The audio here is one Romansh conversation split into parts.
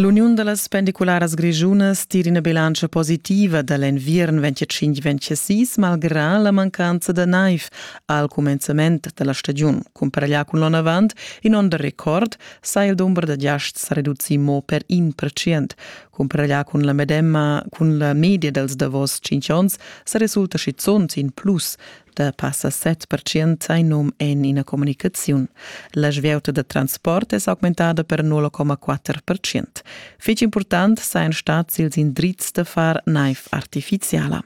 L'uniun da las pendicularas grischunas tira ina bilantscha positiva da l'enviern 25-26 malgrà la mancanza da naiv al cumenzament da la stagiun. Cumparaglià cun l'onn avant, in onn da record, sa il dumber da giasts sa reducì mo per in percent. Cumparaglià cun la medemma, cun la media dals davos cinque onns, sa resulta schizunt in plus. da passa 7% sai num en ina comunicaziun. La svieuta da transport è augmentada per 0,4%. Fitg important sajan stats ils indrizs da far naiv artificiala.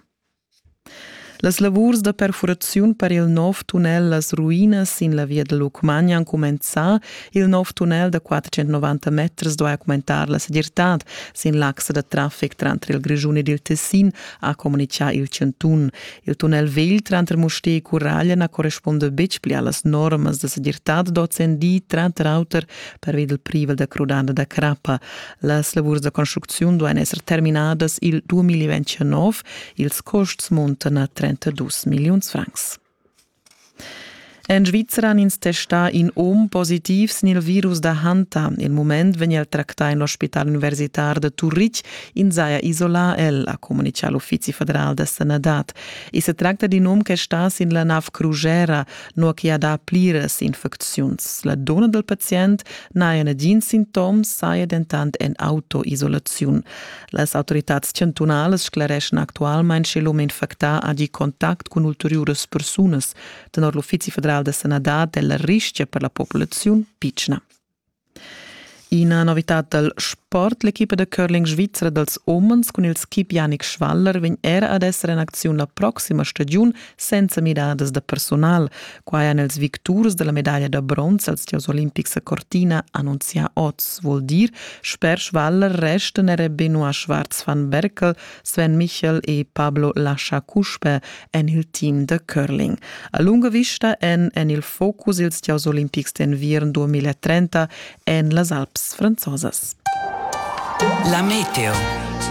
Las lavurs da perfuraziun per il nov tunnel Las Ruinas sin la via da Lucmagna han cumenzà. Il nov tunnel da 490 meters duai augmentar la segirtad sin l'axa da traffic tranter il Grischun ed il Tessin, ha communitgà il chantun. Il tunnel vegl tranter Mustér e Curaglia na correspunda betg pli a las normas da segirtad d'ozendi, tranter auter pervi dal privel da crudada da crappa. Las lavurs da construcziun duain esser terminadas il 2029. Ils custs muntan a 32 milliuns francs. En Svizra han ins testà in um positiv sin il virus da Hanta. Il mument vegn el tractà en l'ospital universitar da Turitg. Ins saja isolà el, ha communitgà l'Uffizi federal da sanadad. I se tracta d'in um che sta sin la nav crugera, nua che ha dà pliras infecziuns. La donna dal pazient n'haja nagins sintoms, saja dentant en autoisolaziun. Las autoritads chantunalas sclereschan actualmain sche l'um infectà ha gì contact cun ulteriuras persunas tenor l'Uffizi federal da sanadad e la rischia per la populaziun pitschna. Ina novitad dal sport. L'equipa da curling svizra dals umens cun il skip Janik Schwaller vegn era ad esser en acziun la proxima stagiun senza midadas da personal. Quai han els victurs della medaglia da bronz als tios olimpics a Cortina annunzia oz, vuol dir, sper Schwaller resten er Benoit Schwarz van Berkel, Sven Michel e Pablo Lascha-Cuspe en il team da curling. A lunga vista en en il focus ils tios olimpics d'enviern 2030 en las Alps franzosas. La meteo.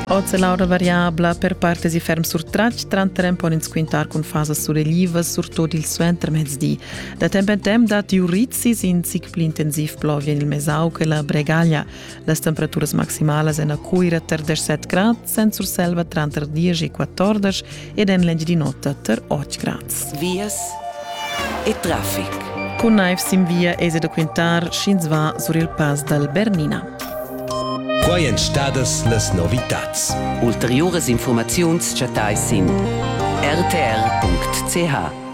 Oz è l'aura variabla per partes e ferm surtratg, tranter en pon ins quintar cun fasas surelivas, surtut il suentermezdi. Da temp en temp datti urizis, in zic pli intensiv plovia en il Mesau che la Bregaglia. Las temperaturas maximalas en a Cuira tar 17 grad, Sen Surselva tranter diesch e quattordas ed en l'Engiadin'Ota tar Otgrans. Vias e traffic. Cun naiv sin via eis da quintar sch'ins va sur il pass dal Bernina. Quai èn stadas las novitads. Ulteriuras informaziuns chattais sin rtr.ch.